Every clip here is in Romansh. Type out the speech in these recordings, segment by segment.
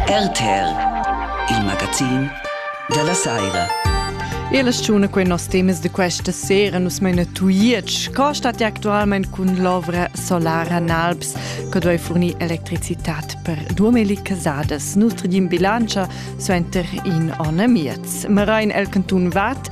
RTR, il magazin dalla saira. E la stagione quei nos temas de questa sera nus meina tuietsch, co stat actualmente cun l'ovra solara Nalps, che dovei fornir electricitat per duemili casadas. Nutri din bilancia suenter in onne miez. Marain el cantun Vat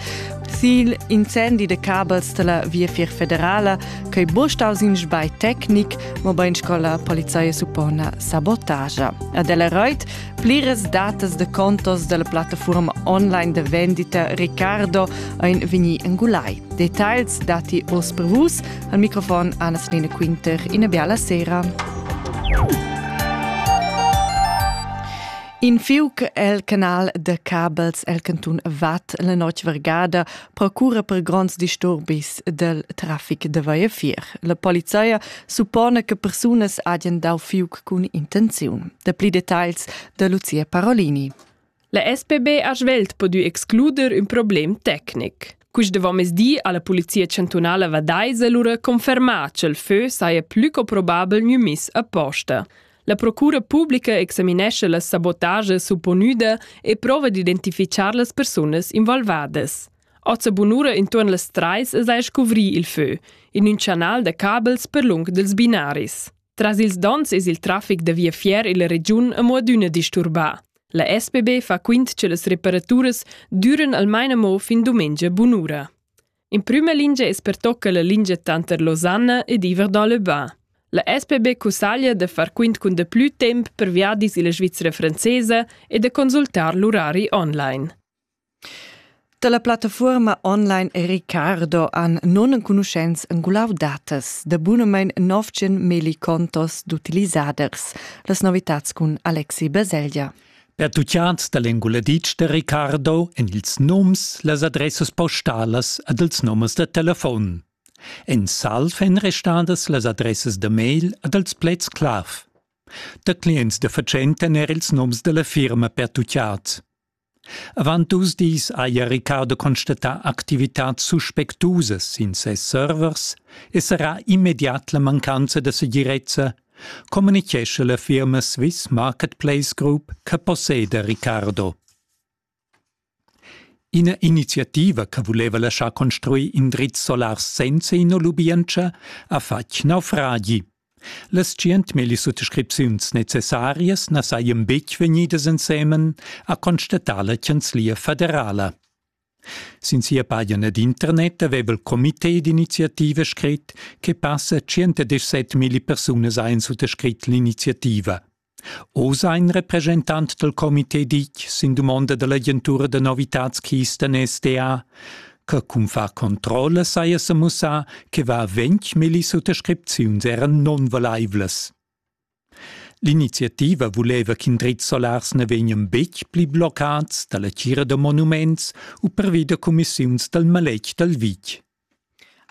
Zil incendi de cabels della Via Federala, che bostaus in sbai tecnic, mobain scola polizia suppona sabotagia. Ad el reit pliras datas de contos della plattaforma online de vendita Ricardo ein veni engulai. Details dati os per vus al microfon Anas Nina Quinter in biala sera. In fiuc el canal de cabels el cantun Vat la notg vergada procura per gronds disturbis del traffic de Vaiefier. La polizia suppone che persunas hagen dau fiuc cun intenziun. De pli details de Lucia Parolini. La SPB ha svelt podu excluder un problem tecnic. Queste vomesdi alla polizia chantunala vadaise lura conferma ch'el fö saia plü co probabel gnü miss a posta. La procura publica examinescha las sabotages supponüda e prova d'identifichar las persunas involvadas. Oza bunura intuorn las trais es a scuvrir il fö, in ün chanal da cabels per lung dels binaris. Tras ils dons es il trafic da viafier illa regiun amo adüna disturbà. La SPB fa quint che las reparaturas düren almain amo fin dumengia bunura. In prüma lingia es pertocca la lingia tanter Losanna ed Iver da Lebas. La SPB cussaglia da far quint cun da plü temp per viadis illa Svizra francesa e da consultar l'urari online. Da la plattafuorma online e Ricardo han non enconuschents engulau datas da bunamein 900 millicontos d'utilisaders. Las novitats cun Alexi Baselgia. Pertucciants dal enguladitsch da Ricardo en ils nums, las adressas postalas ed ils numers da telefon. En salv èn restadas las adressas da mail ed els plets clav. Da clients da fatschenta er ils nums da la firma pertucciat. Avant dus dis haja Ricardo constatà activitads suspectusas sin ses servers e sarà immediat la mancanza da segirezza communichescha la firma Swiss Marketplace Group che posseda Ricardo. Ina iniziativa che vuleva laschar construir indrizs solars senza ina lubientscha ha fatg naufragi. Las centmilli suttascripziuns necessarias na sajan betg vegnidas ensemen, ha constatà la Chanzlia federala. Sin sia pagina d'internet aveva il comité d'iniziativa scrit che passa 117 milli persunas ein suttascrit l'iniziativa. Oz ha in representant dal comité ditg sin dumonda dall'agentura da novitatschiisten SDA che cun far controlla saja semussà che va ventg milli suttascripziuns eran nonvalaivlas. L'iniziativa vuleva ch'in dretg solars na vegnan betg pli bloccads da la tgira da monuments u pervi da cumissiuns dal maletg dal vitg.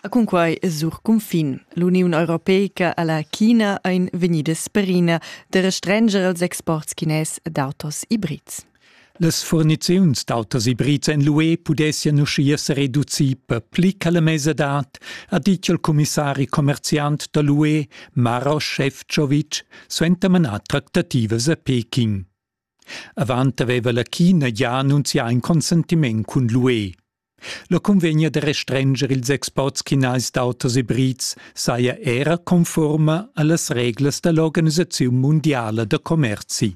A cunquai es sur cunfin. L'Uniun Europeica a la China ein vegnidas perina da restranger els exports chines d'autos ibrids. Las furniziuns d'autas ibrids en l'UE pudessian uschia sa reducir per pli che la mesadad, ha ditg il cumissari commerziant da l'UE Maros Šefčovič suenter manar tractativas a Peking. Avant aveva la China gia annunzià in consentiment cun l'UE. La cunvegna da restrenger ils exports chinais d'autos ibrids saja era conforma a las reglas da l'Organisaziun mundiala da commerzi.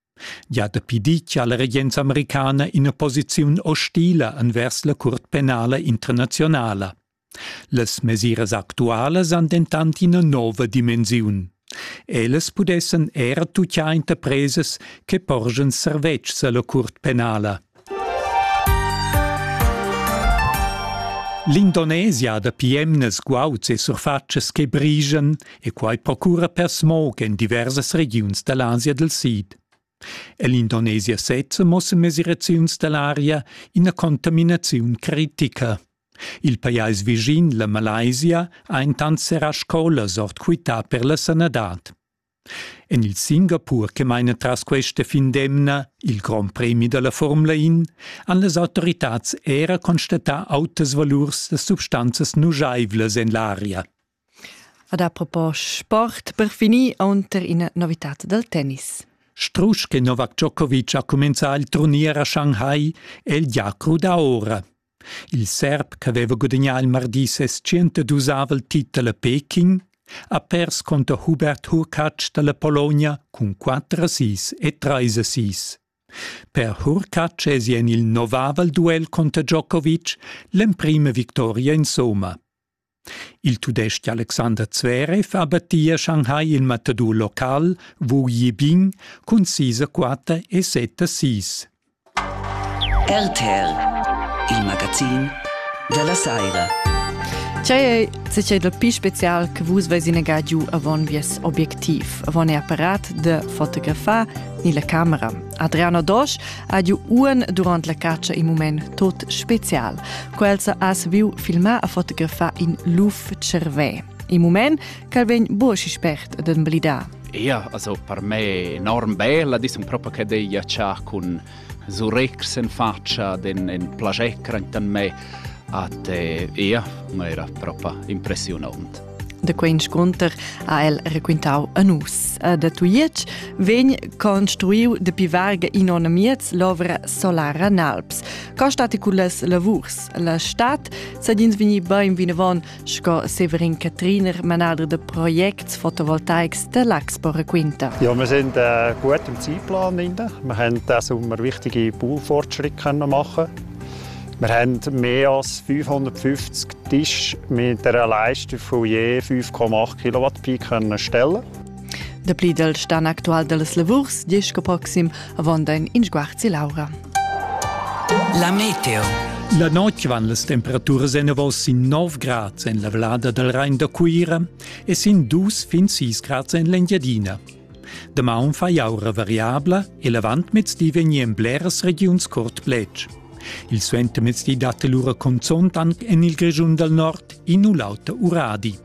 gia dapi ditg ha la regenza americana ina posiziun hostila envers la curt penala internazionala. Las mesiras actualas han dentant ina nova dimensiun. Ellas pudessan er tutgiar interpresas che porgen servetschs alla curt penala. L'Indonesia da piemnas guauds e surfatschas che brigan e quai procura per smog en diversas regiuns da l'Asia dal Sid. Ell'Indonesia sezza mossen mesiraziuns da l'aria ina contaminaziun critica. Il pajais vischin, la Malaysia, ha intant serrà scolas ord quità per la sanadad. En il Singapur che maina tras questa fin d'emna il grond premi da la Formula In han las autoritads era constatà autas valurs da substanzas nujaivlas en l'aria. Ad apropos sport, per finir unter ina novitad dal tennis. Strusch che Novak Djokovic ha cumenzà il turnier a Shanghai è il giacru da ora. Il serb ch'aveva gudagnà il mardi ses tschientadusavel titel a Peking ha pers cunter Hubert Hurkacz da la Pologna cun quatter assis e trais assis. Per Hurkacz èsi en il novavel duel cunter Djokovic l'emprima victoria insomma. Il tudestg Alexander Zverev ha battì a Shanghai il matador local Wu Yibing cun sis a quatter e set a sis. RTL, il magazin della saira. Tgei se c'è dal pi special che vus veis inegà giu avon vies objectiv, avon e apparat de fotografar ni la camera. Adriano Dosch ha giu uon durant la catscha in mument tot special. Quels has viu filmar a fotografar in luf cervè. In mument ch'el vegn buosi spert d'emblidar. Ja, also per me enorm bella, dis un proprio che dei giaccià cun surex in faccia den in plagecra intan me. At ja, era proprio impressionant. Da quei inscunter ha el raquintau a nus. E da Tujetsch vegn construiu dapi varga in onn miez l'ovra solara Nalps. Co stat cullas lavurs? La stat sadins vegni bein vinavon sco Severin Catriner, manader da projects fotovoltaics de l'Axpo raquinta. Ja, wir sind äh, gut im Zeitplan drin. Wir haben diesen Sommer wichtige Baufortschritte machen können. Wir haben mehr als 550 Tische mit einer Leistung von je 5,8 Kilowatt-Peak stellen Der Plidel sta aktuell dels Lavurs diesch proxim avon dein Inschguarzi Laura. La meteo. La notg van las temperaturas enavos in 9 grad en la vlada dal Rhein da Cuira e sin 2 fin 6 grad en l'Engiadina. Damaun fa jau ra variabla e l'avantmezdi vegnan bleras regiuns curt cletg. Il suentermezdi dat lura conzont anc en il Grischun dal nord in u l'auter uradi.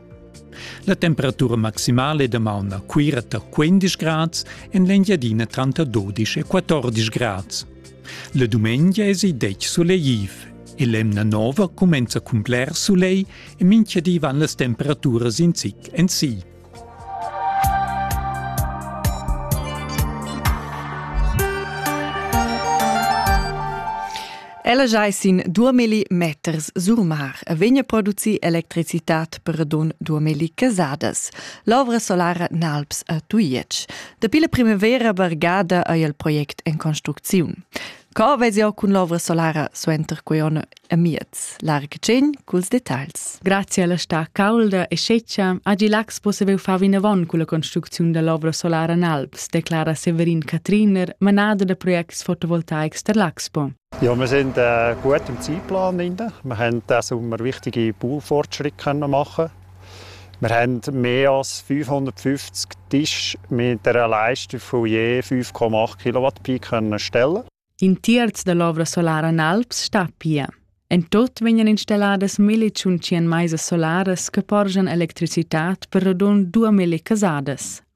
La temperatura maximale damaun a Cuira tar 15 grads, en l'Engiadina tranter 12 e 14 grads. La dumengia èsi detg sulegtiv e l'emna nova cumenza cun bler sulegl e minchadi van las temperaturas in zic en si. Ella giai sin duamilli meters surmar e vegna produci electricitat per don duamilli casadas. L'ovra solara Nalps a Tuiec. Dapi la primavera bargada ei il project en construcziun. Co vezi jau cun l'ovra solara suenter quei onn e miez? Larga tgegn culs detagls. Grazie alla sta caulda e sceccia, Agi Lax possibel far vinavon con la construcziun dell'ovra solara en Alps, declara Severin Katriner, manada da projects fotovoltaics der Laxpo. Ja, wir sind äh, gut im Zeitplan. Wir haben diesen Sommer wichtige Poolfortschritte machen Wir haben mehr als 550 Tische mit einer Leistung von je 5,8 kW Pi können stellen. In terz dell'ovra solara in Alps sta pia. En tot vegnan installadas milli tschun tschien meisas solaras che porgian electricitat per radund 2000 casadas.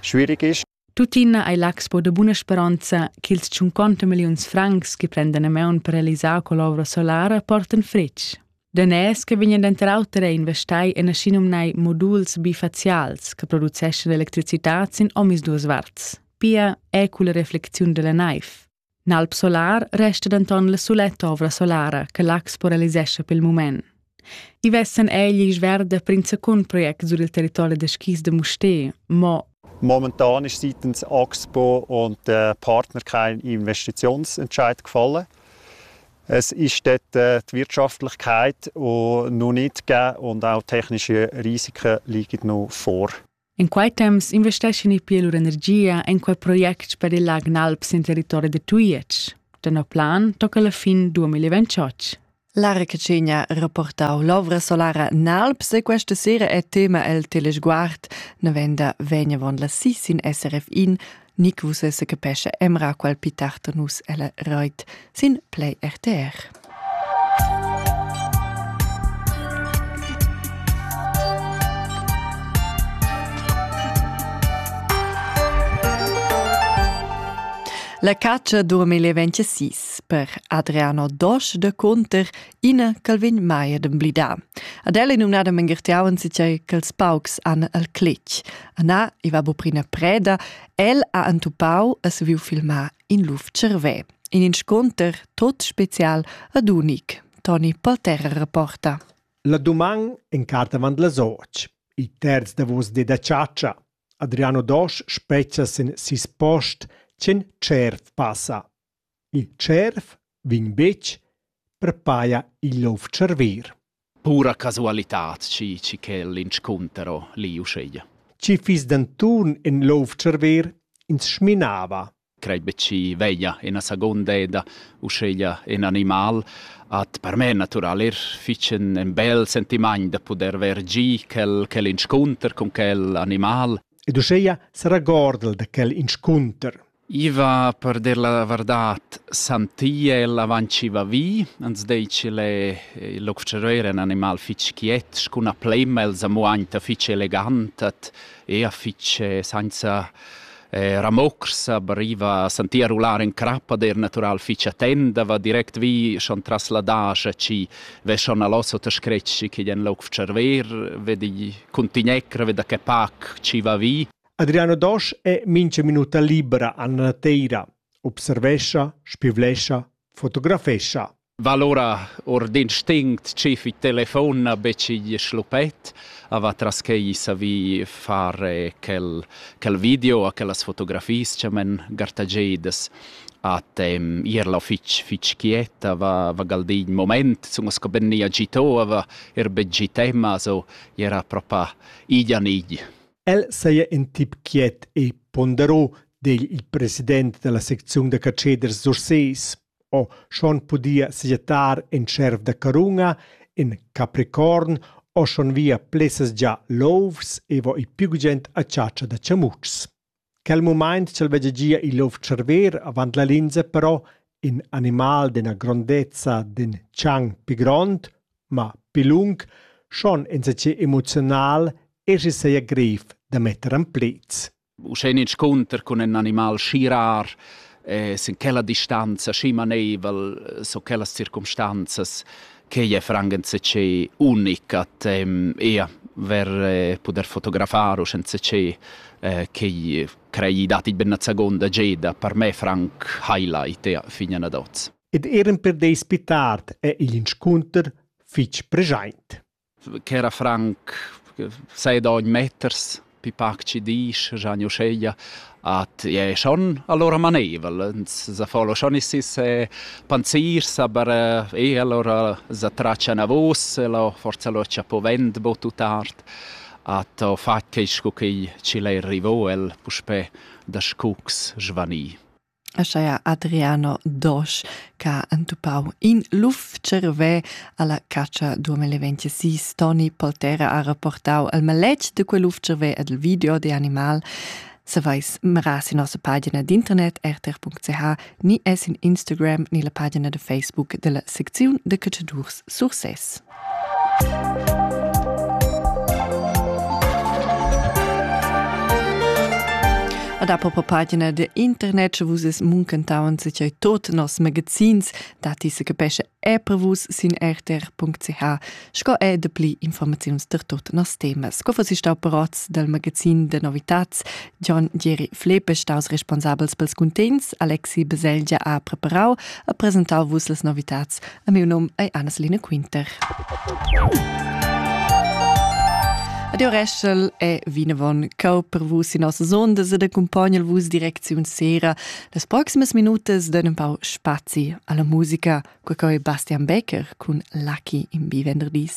Schwierig ist. Tuttina ei l'expo de buna speranza ch'ils 50 milliuns francs che prendan a maun per realisar quell'ovra solara portan fritg. Daners che vegnan denter auter a investai en aschinumnai moduls bifacials che produceschan electricità sin omisduas varts, pia è culla reflexiun della naiv. N'alp solar resta denton la suletta ovra solara che Lax paralisescha pel mument. I vessan egl isch verda prinzacun project sur il territori da skis de Musté, mo Momentan ist seitens Axpo und der Partner kein Investitionsentscheid gefallen. Es ist dort äh, die Wirtschaftlichkeit noch nicht gegeben und auch technische Risiken liegen noch vor. In quei temps investeschin i pia lur energia en quei project per il Lag Nalp sin territori da Tujetsch. Tenor plan tocca la fin 2028. La Rececenia reportau l'ovra solara Nalps e questa sera è tema el telesguard. Novenda vegna von la SIS in SRF in ni che vus esse capescha emra qual pi tard nus ella reit sin Play RTR. La caccia durmi le 26 per Adriano Dosch de Conter ina ch'el vegn mai ad emblidar. Ad el è numnada Mengertiauen sincer ch'els paucs han al cletg. Anna, i va buprina preda, el ha entupau e saviu filmar in luf cervè. In inscunter tot special ad unic. Toni Polterra reporta. La doman en carta avant las och. Il terz davos de da ciaccia. Adriano Dosch spezza sin sis post, cen cert passa. Il tscherv vegn betg per paja igl lov tscharver. Pura casualitad, chi, chi quel inscuntero li uscheia. Chi fiss denton in lov tscharver ins sminava. Crei be chi veglia ina seconda eda, uscheia in animal, at per me natural er ficen en bel sentimant da poder vergir quel, quel inscunter con quel animal. Ed uscheia sarà gordel da quel inscunter. I va per dir la vardat santia el avant chi va vi, ans dei ch'el è il observair è ün animal fich quiet, scuna plema els amo aint fich elegant at ea fich sainza eh, ramocs, aber i va a sentir rular in crap, ad eir natural fich attenda, va direct vi schon tras la dascha chi ve schon allosso ta scretsch chi den l'observer, vedi cuntignecra, veda che pac chi va vi. Adriano Dosch è mincha minuta libra an la nateira, observescha, spivlescha, fotografescha. Va lura or d'instinct schi fi telefon na betg schluppet, a va tras quei savi fare quel, quel video a quellas fotografies che men gartagedas at um, ierla fitch fitch quieta va va galdin moment sun sco ben ni agito va er be gitema so era propa idia nidi El saja in tip quiet e ponderò, di il president da la secziun da catscheders Sursés. O schon pudia sajettar in cerv da carunga, in capricorn o schon via plessas già louvs e vo i più gent a chatscha da chamutschs. Quel mumaint ch'el veggia gia il luf tscharver avant la linza però ün animal d'üna grondezza d'ün tschang pü grond, ma pü lung, schon insatgè emoziunal e schi saja greiv da metter in pleds. Uschè inscunter cun ün animal schi rar, e sin quella distanza schi maneivel, so quellas circumstanzas, Quei è franchentse unic a te ia ver eh, poder fotografar u schentse eh, che crei dati ben la seconda geda per me franc highlight ja, fin ad oz. Ed eran per dei spitart è igl inscunter fitg preschaint. ch'era franc sei da ogn meters pi pac chi disch, Gianni uscheglia, at è schon allora maneivel, sa folo schon issis e panzirs, aber e allora sa traccia navos e lo forza lo cha po vend bo tut art, at ho fat quist cu chi l'he arrivò el puspè da scucs svanì. aschia Adriano Dosch che ha entupau in luf cervè alla caccia 2026. Toni Poltera ha reportau il maletg de quel luf cervè ed il video de animal. Savais meras in nossa pagina d'internet rtr.ch ni es in Instagram ni la pagina de Facebook della secziun de cacciadurs Sursès. da popo pagina de internet che vus es muncentaun se chai tot nos magazins dati se capesce e prevus sin rtr.ch sco e de pli informaziuns per tot nos temas co fossi stau parots del magazin de novitats John Jerry Flepe staus responsabels pels cuntents Alexi Beselgia ha preparau a presentau vus les novitats A miu nom ei Anneline Quinter. Adio Reschel e vinavon cau per vus in nossas ondas ed accompagnal vus direcziun sera las proximas minutas den un pau spazi alla musica, qua coi Bastian Becker cun Lucky im Bivenderdis.